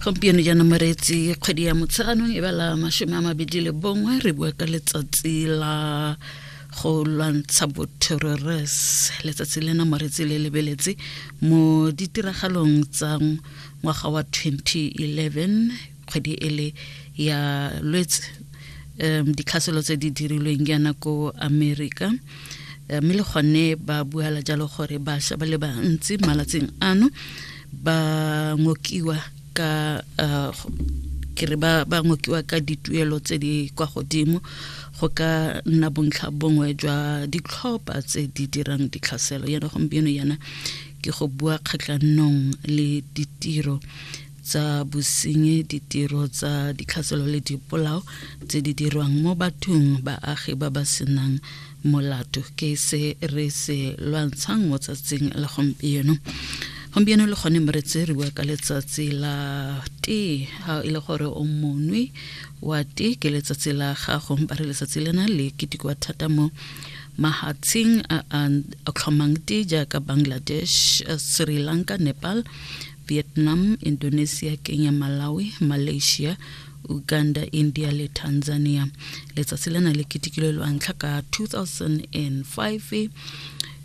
gompieno jaana moreetsi kgwedi ya motsheganong e bala masome a mabedi le bongwe re bua ka letsatsi la go lwantsha boterrores letsatsi lena moreetsi le lebeletse mo ditiragalong tsa ngwaga wa 2011 kgwedi e le ya lwetse um ditlhaselo tse di dirilweng yana ko america eh, mme le gone ba buala jalo gore bašwa ba le bantsi malatsing ano ba ngokiwa ka uh, ke re ba ba ngokiwa ka dituelo tse di kwa godimo go ka nna bontlha bongwe jwa ditlhopha tse di dirang ditlhaselo yana gompieno yana ke go bua kgatlhanong le ditiro tsa bosenyi ditiro tsa ditlhaselo le dipolao tse di dirwang mo bathong baagi ba ba senang molato ke se re se lwantshang mo tsatsing la gompieno gompieno le gone mo re tseriwa ka letsatsi la tee ga e le gore o monwe wa tee ke letsatsi la gago ba re letsatsi lena le ketekiwa thata mo mahatsheng a a tlhomang te jaaka bangladesh sri lanka nepal Vietnam, Indonesia, Kenya, Malawi, Malaysia, Uganda, India le Tanzania. Letsatsi lena le ketikilwe lwa ntlha ka 2005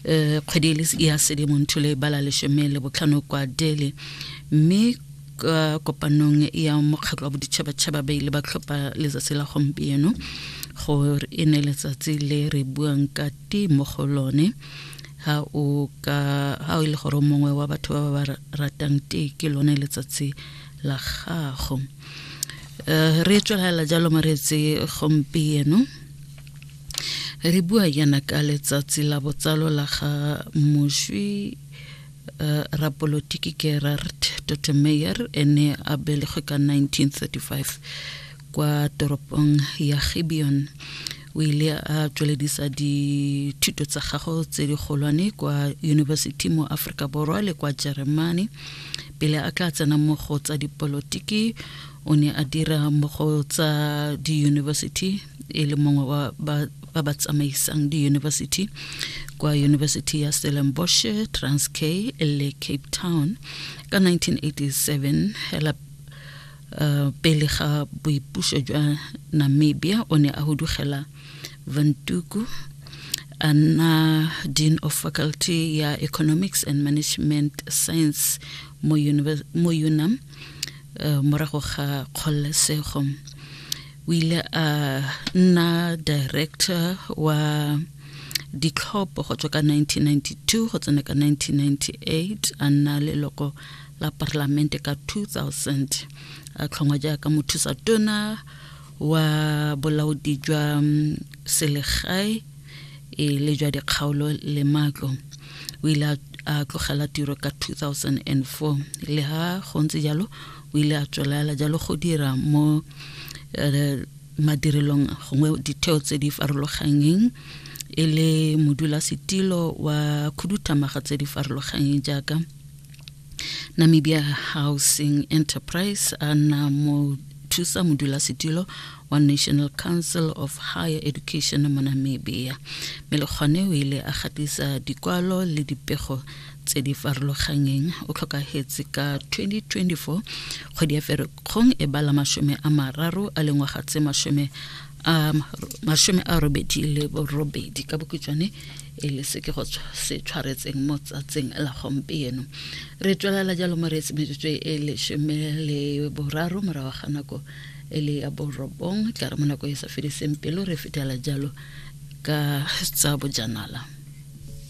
eh, kgwedi e le s- ya sedimontsho le bala leshome le botlhano kwa Delhi mme ka kopanong ya mokgatlho wa boditšhabatšhaba ba ile ba tlhopha letsatsi la gompieno gore e ne letsatsi le re buang ka tee mo go lone ha o ka ha o e le gore mongwe wa batho ba ba ratang tee ke lone letsatsi la gago eh, re tswelela jalo mareetse gompieno re bua yana ka letsatsi la botsalo la ga moswi Eh, rapolotiki gerard dotemeyer ene a belegwe ka 1935 kwa toropong ya gibeon o ile a tsweledisa dithuto tsa gago tse di golwane kwa yunibesithi mo aforika borwa le kwa jeremane pele a tla tsena mo go tsa dipolotiki o ne a dira mo go tsa diyunibesithi e le mongwe wa ba ba ba tsamaisang diyunibesithi kwa yunibesithi ya stellenbosch transkay le cape town ka 1987 hela Uh, pele ga boipuso jwa namibia o ne a hudugela vantuku a nna dean of faculty ya economics and management science mo, mo unam uh, morago ga kgololesego o ile a nna director wa ditlhopho go tswa ka 1992 go tsena ka 1998 a nna leloko la parlamente ka 2000 a tlhongwa jaaka mothusa tona wa bolaodi jwa mm, selegae e le jwa dikgaolo le matlo o ile a tlogela tiro ka 2004 le ha go ntse jalo o ile a tswelela jalo go dira mo eh, madirelong gongwe ditheo tse di farologanyeng e le modulasetilo wa khuduthamaga tse di farologanyeng jaaka Namibia Housing Enterprise a na mo thusa modulasetilo wa National Council of Higher Education mo Namibia mme le gone o ile a gatisa dikwalo le dipego tse di farologanyeng o tlhokagetse ka 2024 kgwedi ya ferekgong e bala masome a mararo a lengwaga tse masome a masome a robedi le borobedi ka bokutswane e le se ke go se tshwaretseng mo tsatsing la gompieno re tswelela jalo mo reetse metsotso e lesome le boraro morago ga nako e le ya borobong tla re mo nako e sa fediseng pelo re fetela jalo ka tsa bojanala